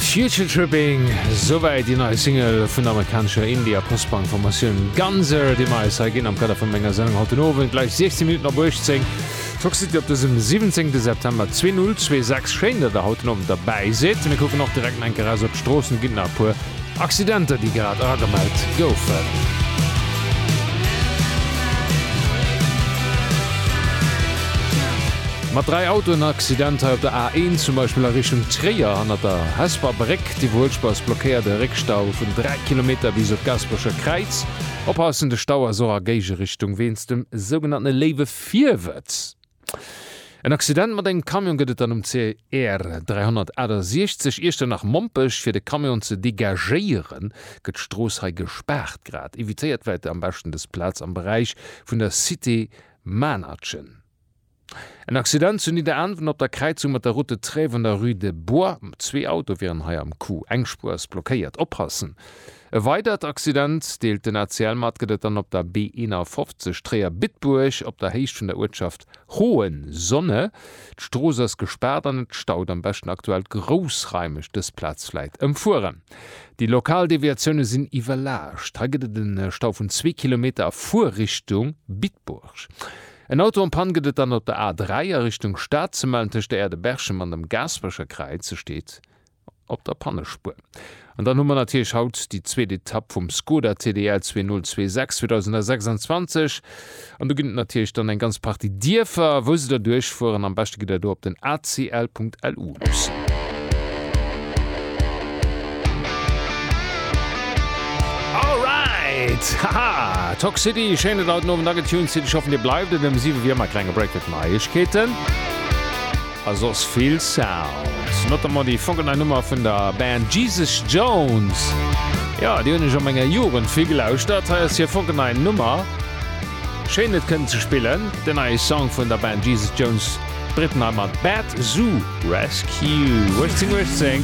Future Tripping, souwäit déi nei Single vun der amerikanescher Indie a Post-Punk Formatioun Ganzer, déi mer eis hei ginn am Kader vu menger Sendung haut den Owend gläich 16 Minutten op 18. D'Fox City op dësem 17. September 2026. Schéin, datt der haut den Owend derbäi sidd. Mir kucken och direkt nach eng Kéier raus op d'Stroossen, ginn nach e puer Accidenter, déi grad agemellt goufen. Mat 3 Autoenaccidenter op der A1, zum Beispill a Richtung Tréier hannert der Hesper Bréck, déi vu Houtschbous blockéiert, e Réckstau vun 3 Kilometer bis op d'Gaasperecher Kräiz. Oppassen, de Stau ass och a Géigeerichtung wéinst dem sougenanntene léiwe Virwëtz. En Accident mat engem Camion gëtt et dann um CR 368 Iechternach-Mompech. Fir de Camion ze degagéieren, gëtt d'Strooss hei gespaart. Grad evitéiert wäit der am beschten dës Plaz am Beräich vun der Cité Maennertchen. En Accident zu Nidderaanwen op der Kräizung mat der Route de Trèves an der Rue de Bois. Zwee Autoe wieren hei am Coup. Eng Spuer ass blockéiert. Oppassen! E weidert Accident deelt den ACL mat, gëtt et dann op der B51 Tréier-Bitburg op der Héicht vun der Uertschaft Hohenzonne. D'Strooss ass gespaart an et staut. Am beschten aktuell groussraimeg dës Plaz vläit ëmfueren. Déi lokal Deviatioune sinn iwwerlaascht. Hei gëtt et e Stau vun zwee Kilometer a Fuerrichtung Bitburg. En Auto en Panne gëtt et dann op der A3 a Richtung Stad ze mellen. Tëscht der Aire de Berchem an dem Gaasperecher Kräiz steet op der Pannespuer. An dann hu mer natierlech haut déi zweet Etapp vum Skoda TDL 2026 2026. An do ginn et natierlech dann eng ganz Partie Dierfer, wou se da duerchfueren. Am beschte gitt Der do op den acl.lu luussen. All right! Haha! Tock City, schéinen haut den Owend agetuned. City, ech hoffen, Dir bleift et. Ëm 7 Auer wier ëmmer e klenge Break fir d'Neiegkeeten. A soss vill Sounds, notamment déi Fogelnei Nummer vun der Band Jesus Jones. Jo, déi hunn ech a menger Jugend vill gelauschtert. Hei ass hir fogelnei Nummer. Schéin et kënnen ze spillen, den neie Song vun der Band Jesus Jones, d'Britten hei mat Bad Zoo Rescue, 1818.